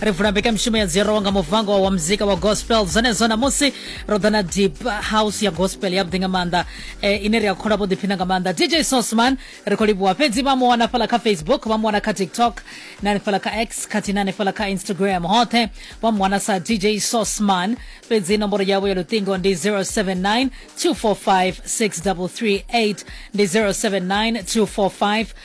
ri vula mbekamishumo ya dziro nga muvango wa muzika wa gospel zwenezwo namusi ro ḓa na deep house ya gospel yavhuḓi nga maanḓa e, ine ri a kholwa vho ḓiphina nga maanḓa dj sosman ri khou livhuwa fhedzi vha mu wana fhala kha facebook vha mu wana kha tiktok na hanefhala kha x khathihi na hanefhala kha instagram hoṱhe vha mu wana sa dj sosman fhedzi nomboro yavho ya luṱingo ndi 079 245 6338 ndi 079 245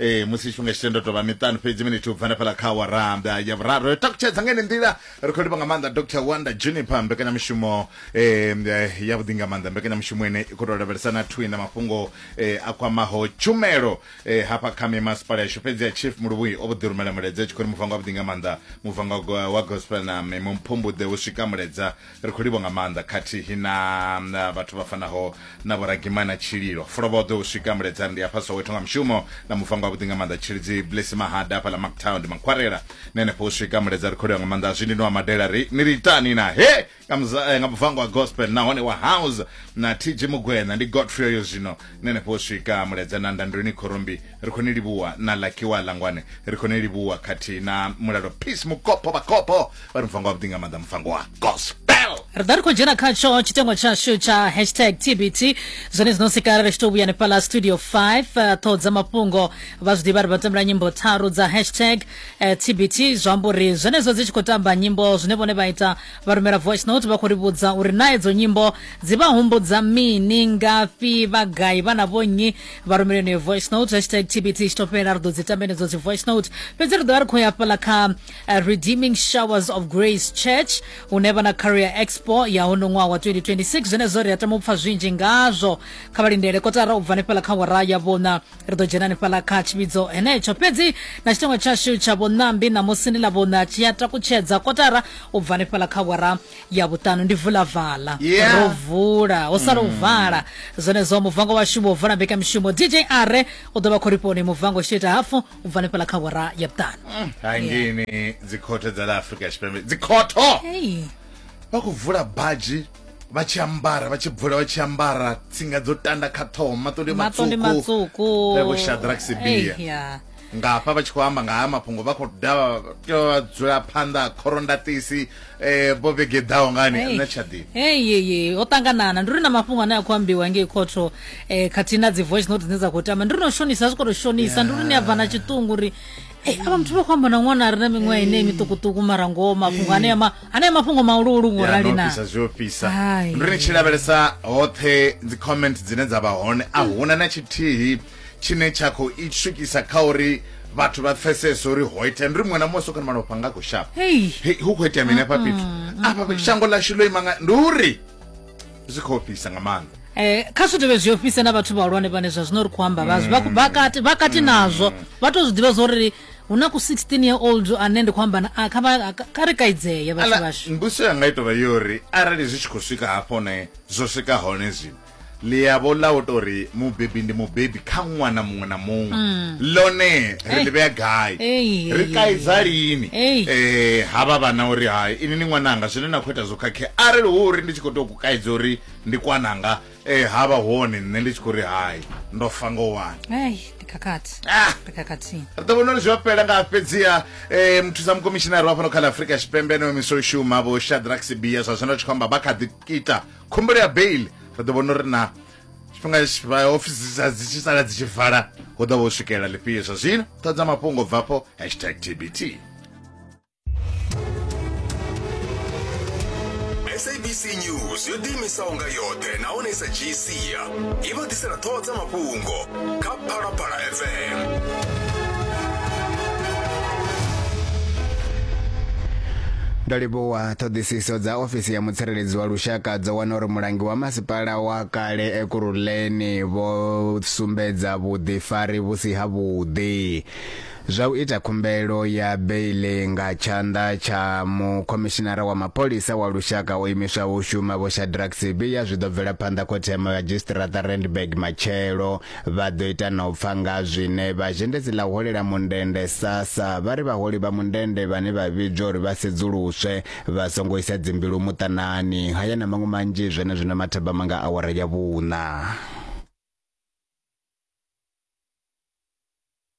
ee musi tshifhinga tshi tendo tovha miṱanu fhedzi minithi u bva nafhala kha waranda ya vhuraru ri takutshedza nga ine nḓila ri khou livha nga maanḓa dr wanda juniper mbekanyamushumo em, eh, ya vhuḓi nga maanḓa mbekanyamushumo ine i khou tou lavhelesa na thwi na mafhungo eh, a kwamaho tshumelo eh, hafha kha mimasipala yashu fhedzi ya chief muluvhui o vho ḓi rumela mulaedza tshi khou ri muvango wa vhuḓi nga maanḓa muvango wa go- wa gospel na mimumphumbuḓe hu swika mulaedza ri khou livho nga maanḓa khathihi na vhathu vha fanaho na vhoragimana tshililo fulovhoḓo u swika muledzani ndi afha soweto nga mushumo na mufango wavhuḓi nga maanḓa tshilidzi blesi mahada afha ḽa mactown ndi makhwarela na henefho u swika muledza ri khou livha nga maanḓa zwi ndi no amadela ri ni ri itani na he nga eh, mufango wa gospel nahone wa house na tg mugwena ndi godfrey yo zwino nṋe ni fho swika muledza na ndandoni khorombi ri khou ni livhuwa na lakiwa langwane ri khou ni livhuwa khathihi na mulalo peace mukopo vhakopo vha ri mufango wavhuḓi nga maanḓa mufango wa gospel ri ḓa ri khou dzhena khatsho tshitengo tshashu tsha hashtag tbt zwone zwino sikara ri tshi tou vhuya nefhala studio 5 eh, ṱhoho dza mafhungo vha zwi ḓivha ri vha tambela nyimbo tharu dza hashtag eh, tbt zwi amba uri zwenezwo dzi tshi khou tamba nyimbo zwine vhone vha ita vha rumela voice note vha khou ri vhudza uri na edzo nyimbo dzi vha humbudza mini ngafhi vha gai vha na vhonnyi vha rumela yeneyo voice note hashtag tbt tshi to fhela ri ḓo dzi tambenedzo dzi voice note fhedzi ri ḓo vha ri khou ya fhala kha eh, redeeming showers of grace church hune vha na career expo ya hono ṅwaha wa 2026 zwenezwo ri a tama u pfa zwinzhi ngazwo kha vha lindele kotara u bva hanefhala kha wara ya vhona ri ḓo dzhena hanefhaḽa kha tshivhidzo henetsho fhedzi na tshitengo tshashu tsha vhunambi ṋamusi ndi ḽa vhuṋa tshi a takutshedza kotara u bva hanefhaḽa kha wara ya vhuṱanu ndi vula vala yeah. ro vula ho sala u mm. vala zwenezwo muvango washu wo vala mbekamishumo dj are u ḓo vha khorifoni muvango tshi ita hafu u bva hanefhaḽa kha wara ya vhuṱanu mm. hai ngini dzikhothe dza ḽa afrika tshipembe dzikhotho vha khou vula baji vha tshi ambara vha tshi bvula vha tshi ambara tsinga dzo tanda kha ṱhoho maṱondi matsuku vho shadrak sibia ngafha vha tshi khou amba nga ha mafhungo vha khou dava tea vha dzula phanḓa khorondatisi um vho vhegeḓaho ngani na tshadi eyeye ho ṱanganana ndi ri na mafhungo ane a khou ambiwa ngei khotho um eh, khathihi na dzi voice note dzine dza khou tamba ndi ri no shonisa zwi khou to shonisa ndi ri ni a bva na tshiṱungu uri ey eh, ava muthu vha khou amba na ṅwana a re na miṅwaha ine miṱukuṱuku mara ngoho mafhungo ane ama anea mafhungo mahuluhulu ngo rali na ofisa zwi ofisa Hai. ndo ni tshi lavhelesa hoṱhe dzi comment dzine dza vha hone a huna na tshithihi tshine tsha khou i swikisa kha uri vhathu vha pfesese uri ho itea ndi ri muṅwe na muṅwe sokoni malofha nga khou shapa Hey. He, hu khou itea mini afha fhethu afha shango ḽashu ḽo ima nga ndi uri zwi khou ofhisa nga maanḓa Eh, kha zwi dovhe zwi ofhise na vhathu vhahulwane vhane zwa zwino ri khou amba vhazwi vha kati vha kati nazwo vha to zwi ḓivha zwo ri hu na ku 16 year old ane ndi khou amba na a kha vha- a- kha ri kaidzeye vhathu Ala, vhashu mbuso yanga i tovha yo ri arali zwi tshi khou swika hafho ne zwo swika hone zwino ḽiyavho ḽa u tori mubebi ndi mubebi kha ṅwana muṅwe na muṅwe ḽone ri Ei. ḽi vhea gai Mm. Ei, ei, ri ei, kaidza ei. lini Ei. Eh, havha vhana uri hai ini ni ṅwananga zwine na khou ita zwo khakhea arali hu uri ndi tshi khou tou ku kaidza uri ndi kwananga Ee, ha vha hone nṋe ndi tshi khou ri hai ndo fa ngo wani Ai, ndi khakhathi. Ah! Ndi khakhathi. ri ḓo vhona uri zwi a fhela nga fhedziha um muthusa mukomishinari wa fhano kha ḽa afurika tshipembe ane omiswa u shuma vho shadrack sibia zwa zwino ri tshi khou amba vha kha ḓi ita khumbelo ya bail ri ḓo vhona uri na tshifhinga tshi- vha ofisi dzi sa- dzi tshi sala dzi tshi vala hu ḓo vha u swikelela lifhio zwa zwino ṱhodza mafhungo bvafho hashtag tbt sabc news yo ḓiimisaho nga yoṱhe nahone sa gc i vha ḓisela ṱhoho dza mafhungo kha phalaphala fm ndo livhuwa ṱhoḓisiso dza ofisi ya mutsireledzi wa lushaka dzo wana uri mulangi wa masipala wa kale ekuruleni vho sumbedza vhuḓifari vhu si havhuḓi zwa u ita khumbelo ya beiḽi nga tshanḓa tsha mukhomishinara wa mapholisa wa lushaka o imiswaho u shuma Vho Shadrack Sibiya zwi ḓo bvela phanḓa khothe ya madzhisiṱiraṱa Randburg matshelo. Vha ḓo ita na u pfa nga zwine vha zhendedzi ḽa u holela mundende SASSA vha ri vhaholi vha mundende vhane vha vhidzwa uri vha sedzuluswe vha songo isa dzimbilu muṱanani. Haya na maṅwe manzhi zwenezwino mathabama nga awara ya vhuṋa.